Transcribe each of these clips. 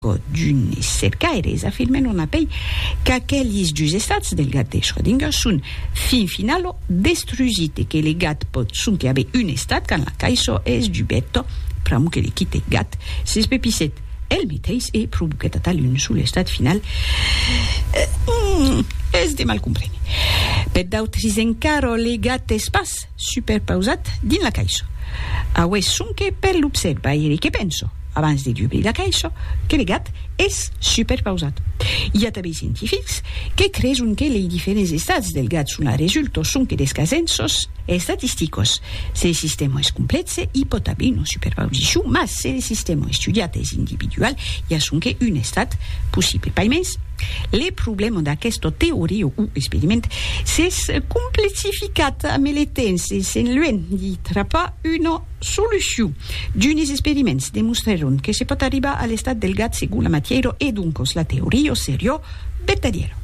Çò d'un es cercaire, es afirmen lo napèi qu'aquelis dus estats del gat de Schrödinger son fin final o destrusit e que le gat pòt sonque aver un estat quand la caisson es dubeta, pr'amor que le quite gat s'espepissèt el meteis e provoquèt atal un sol estat final, es de mal compréner. Per d'autris encara, le gat es pas. Superpausat dins la caisha. Aué sonque per l'observaire que penso, abans de dubrir la caisha, que le gat es superpausat. I a tanben scientifics que creson que lei diferents estats del gat son a resulto sonque des casenços estatisticos. Se le sistèma es complèxe, i pòt aver una superpausicion, mas se le sistèma estudiat es individual, i a sonque un estat possible. Paimens. Le problèma d'aquesta teoria o experiment s'es complexificat ame le temps e s'en luènh di trapar una solucion. D'unes experiments demostrèron que se pòt arribar a l'estat del gat segon la matièra e doncas la teoria seriá vertadièra.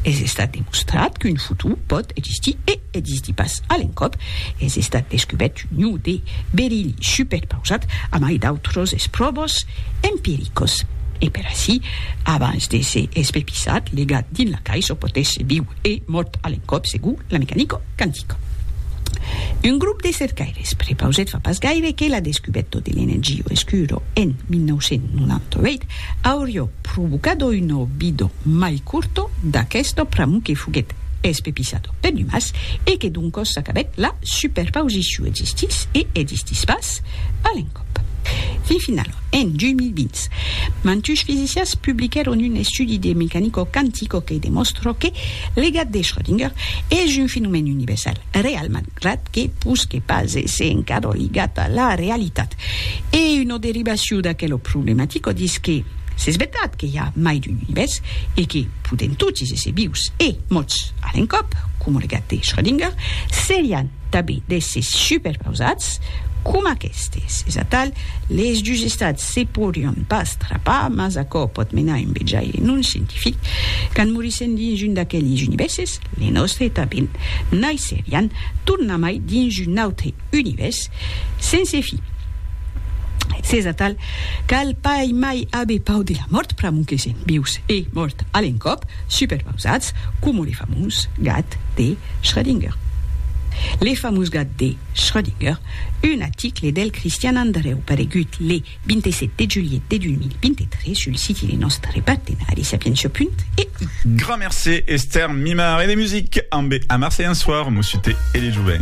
Es estat demostrat qu'un futur pòt existir e. E distí pas a l'encòp, es estat descubèrt un iu de berilh superpausat, amai d'autros espròvos empiricos. E per aicí, abans de se espepissat, legat dins la caish o potètz viu e mòrt a l'encòp segur la mecanico quantica. Un grop de cercaires prepausèt fa pas gaire que la descubèto de l'energia oscura en 1998, Aurió provocado un obido mai curto d'aquesto pr'amor que foguèt espepisado per numas e que doncos s'acabèt la superpausiciu existís e existís pas a l'encòp. Fin finalament, en 2020, mantush fisicians publiquèron un estudi de mecanico quantico que demòstra que le gat de Schrödinger es un fenomèn universal real malgrat que pus que pas èsser encadra ligat a la realitat. E una derivacion d'aquela problematica ditz que s'es vertat que i a mai d'un univèrs e que podèm totis èsser vius e mòrts a l'encòp, coma lo gat de Schrödinger, serián tanben d'èssers superpausats coma aquestes. Es atal, les dus estats se podrián pas trapar, mas aquò pòt menar un vejaire non scientific, quand morissèm dins un d'aqueles univèrses, les nòstres tanben naisserián tornamai dins un autre. univèrs sense fi. S'es atal, cal pas mai aver pau de la mòrt pr'amor que sèm vius e mòrt a l'encòp, superpausats coma le famós gat de Schrödinger. Le famós gat de Schrödinger, un aticle del Cristian Andrèu paregut le 27 de julhet de 2023 sul siti de nòstre partenari sapientia.eu. Grand mercé Esther Mimard e de music ambe Amar Seyan Soir, Mossuté e le Joven.